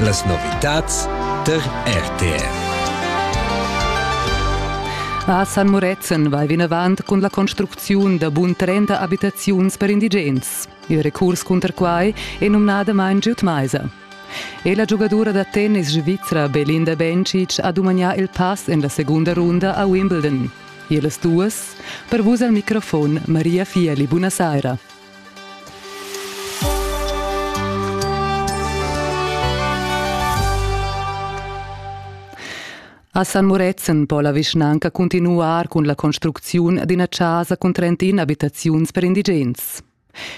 Las novitads tar RTR. A San Murezzan vai vinavant cun la construcziun da bun 30 abitaziuns per indigens. Il recurs cunter quai è numnadamain giud maisa. E la giugadura da tennis svizra Belinda Bencic ha dumagnà il pass en la segunda runda a Wimbledon. Ihr las duas. Per vus al microfon Maria Fieli, buona saira. A San Murezzan po la vischnanca cuntinuar cun la construcziun d'ina chasa cun 31 abitaziuns per indigens.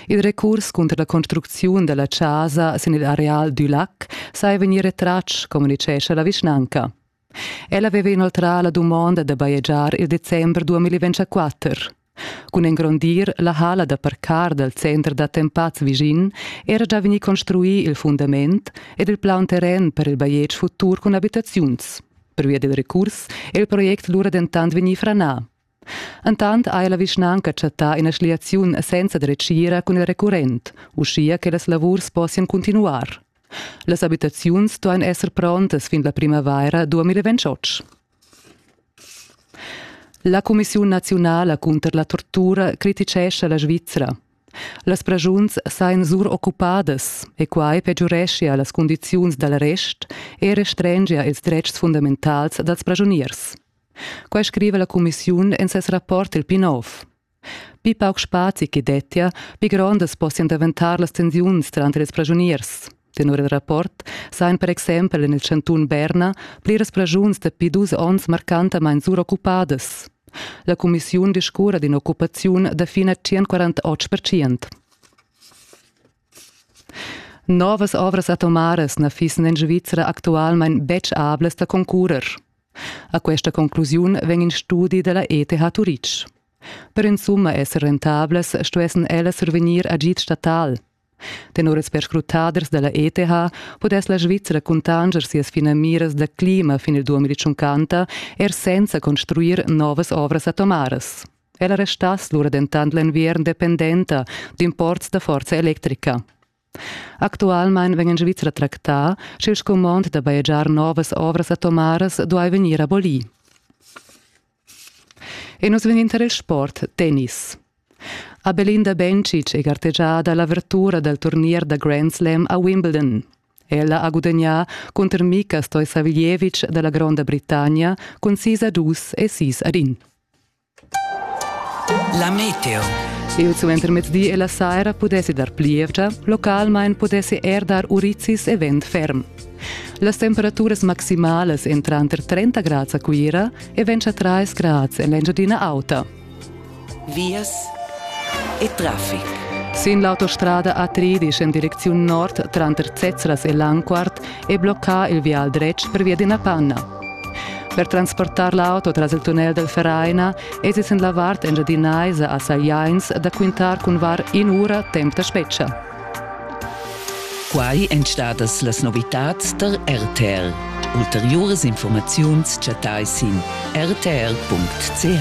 Il recurs cunter la construcziun della chasa sin il areal du lac sai vegnir retratg, communicescha la vischnanca. Ella haveva inoltrà la dumonda da bajegiar il december 2024. Cun engrondir la hala da parcar dal center d'attempats vischin era già vegnì construì il fundament ed il plaun terren per il bajetg futur cun abitaziuns. Pervia dil recurs è il project lura dentant vegnì franà. Entant ha la vischnanca chattà ina schliaziun senza dretgira cun il recurrent, uschia che las lavurs possian cuntinuar. Las abitaziuns duain esser prontas fin la primavaira 2028. La cumissiun naziunala cunter la tortura criticescha la Svizra. Las pragiuns sajan suroccupadas e quai pegiureschia las cundiziuns dal rest e restrengia ils dretgs fundamentals dals pragiuniers. Quai scriva la cumissiun en ses rapport il Pinov. Pli pauc spazi che dettia, pli grondas possian daventar las tensiuns tranter ils pragiuniers. Tenor il rapport sajan per exempel en il chantun Berna pliras pragiuns dapi dus onns marcantamain suroccupadas. La cumissiun discurra d'in'occupaziun da fin a 148 percent. Novas ovras atomaras na fissen en Svizra actualmein betg ablas da concurrer. A questa conclusiun vegn in studi della ETH Turitg. Per insumma esser rentablas stuessen ellas survegnir agid statal. Tenor ils perscrutaders della ETH podess la Svizra cuntanger sias finamiras da clima fin il 2050 er senza construir novas ovras atomaras. Ella restass lura dentant l'enviern dependenta d'imports da forza electrica. Actualmain vegn en Svizra tractà, sch'il scumond da bajegiar novas ovras atomaras duai vegnir abolì. E nus vegnin tar il sport tennis. A Belinda Bencic è gartegiada l'avertura dal turnier da Grand Slam a Wimbledon. Ella ha gudagnà cunter Mika Stoisaviljevic da la Gronda Britannia cun sis a dus e sis ad in. La meteo. Il suentermezdi e la saira pudessi dar plievgia, localmain pudessi er dar urizis e vent ferm. Las temperaturas maximalas èn tranter 30 grads a Cuira e 23 grads en l'Engiadina Auta. Vias e traffic. Sin l'autostrada A3 en direcziun nord tranter Zezras e Langquart e bloccà il vial dretg pervia d'ina panna. Per transportar l'auto tras il tunnel del Vereina es es en la vart engiadinaisa a Sagliains da quintar cun var in'ura temp da spezcha. Quai èn stadas las novitads tar RTL. Ulteriuras informaziuns chattai sin rtl.ch.